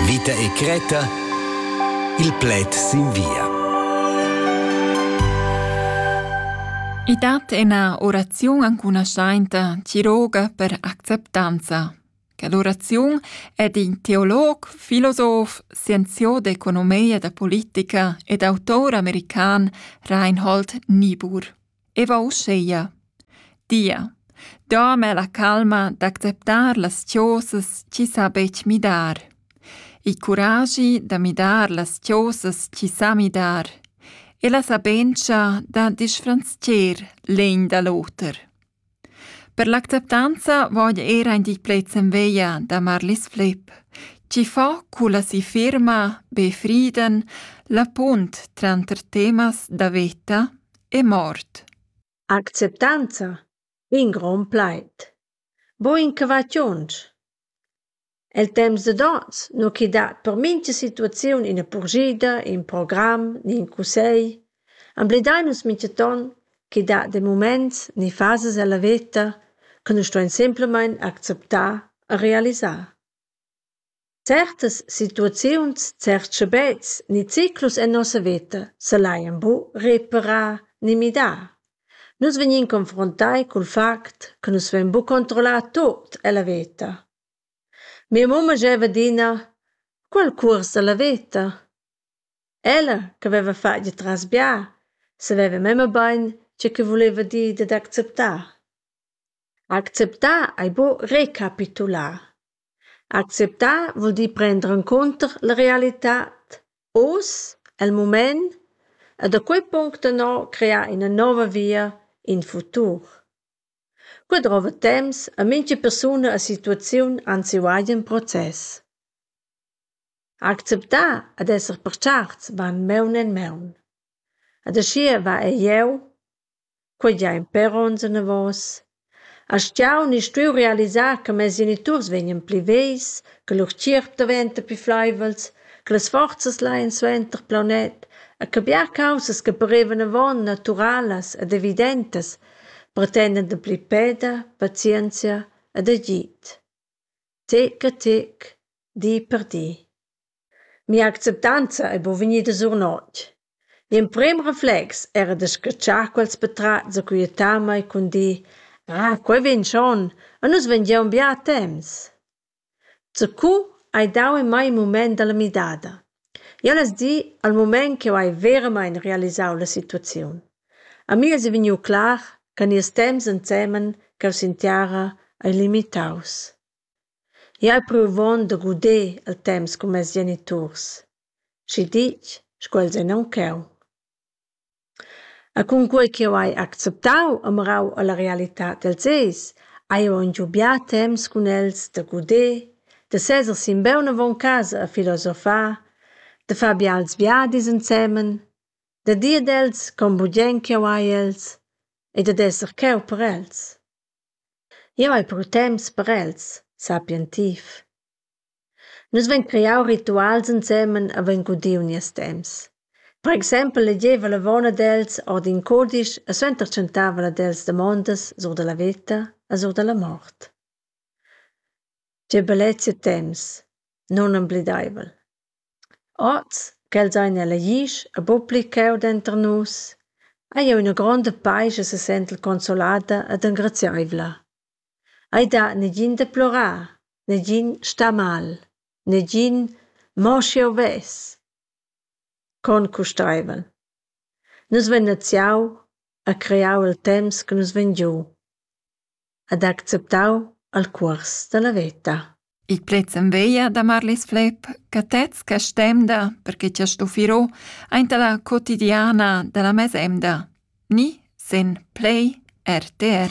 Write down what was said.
Vita e cretta Il pled sin via. I dat ina oraziun ancunaschainta tiroga per acceptanza. Quell'oraziun è d'in teolog, filosof, scienziò d'economia da politica ed autor american Reinhold Niebuhr. E va uscheia: Dia, doma la calma d'acceptar las chosas chi sa betg midar. Il curagi da midar las chosas chi sa midar e la sabentscha da disfranzcher l'egn da l'oter. Per l'acceptanza voja eir aint il pled sen veglia da Marlis Flipp, chi fa culla si firma Be Frieden la punt tranter temas da veta e mort. Acceptanza, in grond plaid. Bo inchavachiunsch. El temps dad ons nu chi dat per mincha situaziun üna purschida, ün program ni ün cussegl. Emblidaimans minchaton chi dat de mumaints ni fasas ella veta chi nu ston simplamaing acceptar e realisar. Certas situaziuns, certs schabets ni ciclus en nossa veta s'al hajan bu reparà ni midà. Nus vegnin confruntai cul fact che nus vein buca controllar tut ella veta. Mia mumma gieva adina quel cuors ella veta. Ella che veva fatg il tras-bia saveva memia bein tgei che vuleva dir dad acceptar. Acceptar ei buca recapitular. Acceptar vul dir prender encunter la realitad oz, el mument e da quei punct ennà crear ina nova via, in futur. Quei drova temps e mintga persuna e situaziun han siu agen process. Acceptar ed esser per certs va en maun en maun. Ed aschia va ei jeu quei gia in pèr onns anavos. Astgau u ni stuiu realisar che mes geniturs vegnien pli vegls, che lur tgierp daventa pli fleivels, che las forzas laien suenter plaunet e che bia caussas che parevan avon naturalas ed evidentas pretendan dapli peda, pazienzia ed agid. Tec a tec, di per di. Mia acceptanza ei buca vegnida sur notg. L'emprem reflex era da scatschar quels patratgs e quietamein cun dir: Ah, quei vegn schon, e nus vein giu aunc bia temps. Zacu hai dau en mei in mument dalla midada. Jeu less dir al mument ch'jeu hai veramein realisau la situaziun. A mi eis vegniu clar che nies temps ensemen ch'jeu sentiara ei limitaus. Jau hai pruvond da guder il temps cun mes geniturs, schi ditg sco els ein aunc cheu. E cunquei ch'jeu hai acceptau e mirau alla realitad dels eis, hai jeu aunc bia temps cun els da guder, da seser simbeun avon casa e filosofar, da far bials viadis ensemen, da dir ad els con bugen ch'jeu hai els e dad esser cheu per els. Jeu hai pur temps per els, sapientiv. Nus vein creau rituals ensemen avon ch'udiu nies temps. Per exempel legeva l'avon ad els ord in cudisch e suenter tschentava el ad els damondas sur dalla veta e sur dalla mort. Tgei bellezia temps, nunemblideivel! Oz ch'els ein elegids e buc pli cheu denter nus, hai jeu ina gronda paisch e sesentel consolada ed engrazieivla. Ei dat negin deplorar, negin star mal, negin mo sch'jeu vess. Con custeivel. Nus vein naziau e creau il temps che nus vegn giu. ed ha acceptau il cuors dalla veta. Il pled s'enveglia da Marlis Flepp che tez che stemda perché chi ha stuffirò aint la quotidiana da la mesemda. Ni sen play RTR.